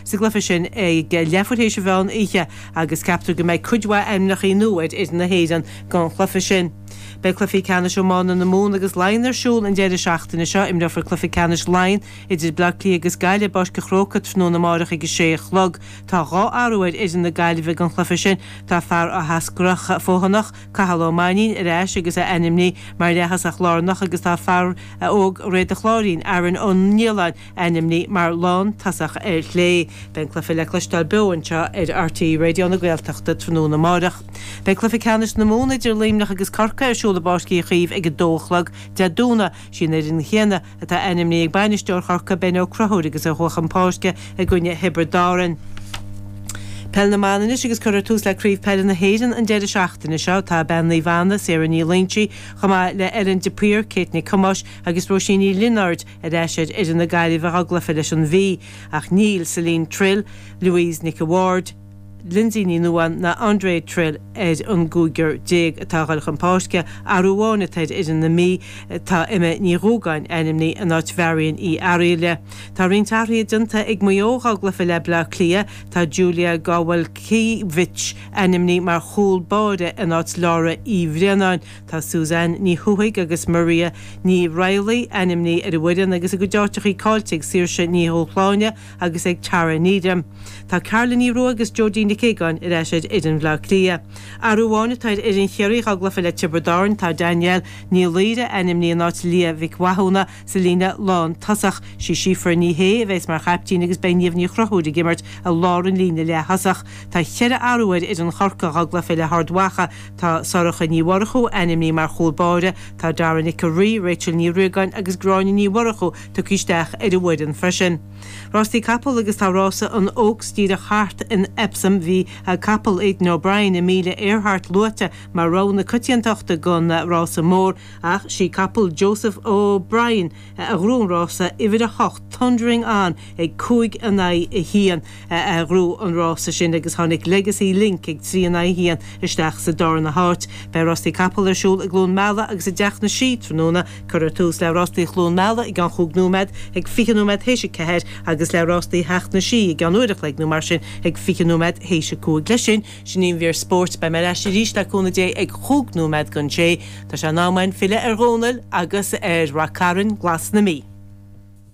Sa gcluiche sin ag leathuair théis an mheán oíche agus ceaptar go mbeidh cuid mhaith ainmneachaí nua ar fhoireann na hÉireann don chluife sin. Beidh cluifí ceannais iomána na Mumhan agus Laighean ar siúl an deireadh seachtaine seo. Imreofar cluife ceannais Laighean idir Bleá Cliath agus Gaillimh i bPáirc an Chróca tráthnóna amárach ag a sé a chlog. Tá dhá athrú ar fhoireann na Gaillimhe don chluife sin. Tá fear Áth Eascrach Fothanach, Cathal Ó Mainnín, ar ais agus é ainmní mar leath-thosach lárnach agus tá fear óg Dhroichead an Chláirín, Aaron Ó Nialláin, Ainmní mar lán tosach ar chlé. Beidh an cluiche le cloisteáil beo anseo ar RTÉ Raidió na Gaeltachta tráthnóna amárach. Beidh Cluiche Ceannais na Mumhan idir Luimneach agus Corcaigh ar siúl i bPáirc Uí Chaoimh ag 2 a chlog Dé Domhnaigh. Sí an fhoireann chéanna atá ainmnithe ag bainisteoir Chorcaigh Ben Ó Crothúir agus a chuaigh chun páirce i gcoinne Thiobraid Árann. Peil na mban anois agus cuirfear tús le Craobh Peile na hÉireann an deireadh seachtaine seo. Tá Bean Naomh Anna, Sarah Ní Loingsigh, chomh maith le Ellen de Paor, Kate Nic Thomáis agus Róisín Ní Lionáird, Ar ais ar fhoireann na Gaillimhe dhá gcluife leis an Mhí, ach níl Chellene Trill, Louise Nic a' Bhaird, Lynsey Ní Nuadháin ná Andrea Trill ar an gcúigear déag atá a ghoil chun páirce, athrú amháin atá ar fhoireann na Mí, tá Emma Ní Dhúgáin ainmní in áit Mharion Uí Fhearaíle. Tá roinnt athruithe déanta ag Maigh Eo dhá gcluife le Bleá Cliath, tá Julia Gawalkiewicz ainmní mar chúl báire in áit Laura Uí Bhraonáin, Tá Suzanne Ní Thuathaigh agus Maria Ní Raghallaigh, ainmní ar an bhfoireann, agus a gcuid áiteachaí caillte ag Saoirse Ní Dhubhshláine agus ag Tara Needham. Tá Carla Ní Rua agus Jodi Nic Aogáin ar ais ar fhoireann Bhleá Cliath. Athrú amháin atá ar fhoireann Chiarraí dhá gcluiche le Tiobraid Árann, tá Danielle Ní Laoire, ainmní in áit Liadh Mhic Mhathúna, sa líne lántosach. Sí Síofra Ní Shé a bheas mar chaiptín agus beidh Niamh Ní Chruthúir ag imirt i lár an líne leath-thosach. Tá ceithre athrú ar fhoireann Chorca dhá gcluiche le hArd Mhacha, Tá Sorcha Ní Mhurchú ainmní mar chúl báire. Tá Dara Nic an Rí, Rachel Ní Riagáin agus Gráinne Ní Mhurchú tugtha isteach ar an bhfoireann freisin. Rástaí Capall agus Tá rása an Oaks díreach thart in Epsom. Bhí a capall Aidan O'Brien, Amelia Earhart luaite mar rogha na coitiantachta don rása mór ach sí capall Joseph O'Brien, A ghnóthaigh an rása uimhir a hocht Thundering On ag cúig in aghaidh a haon a ghnóthaigh an rása sin agus tháinig Legacy Link ag trí in aghaidh a haon isteach sa darna háit. Beidh Rástaí Capall ar siúl i gCluain Meala agus i dTeach na Sí tráthnóna. Cuirfear tús le Rástaí Chluain Meala i gCeann Chúig nóiméad ag fiche nóiméad théis a ceathair agus le Rástaí Theach na Sí i gCeann Uair a chloig nó mar sin ag fiche nóiméad théis a cúig. Leis sin Sin í an mhír spóirt. Beidh mé ar ais arís, le cúnamh Dé, ag chúig nóiméad don sé. Tá sé in am againn filleadh ar Dhónall agus ar Rath Cairn glas na Mí.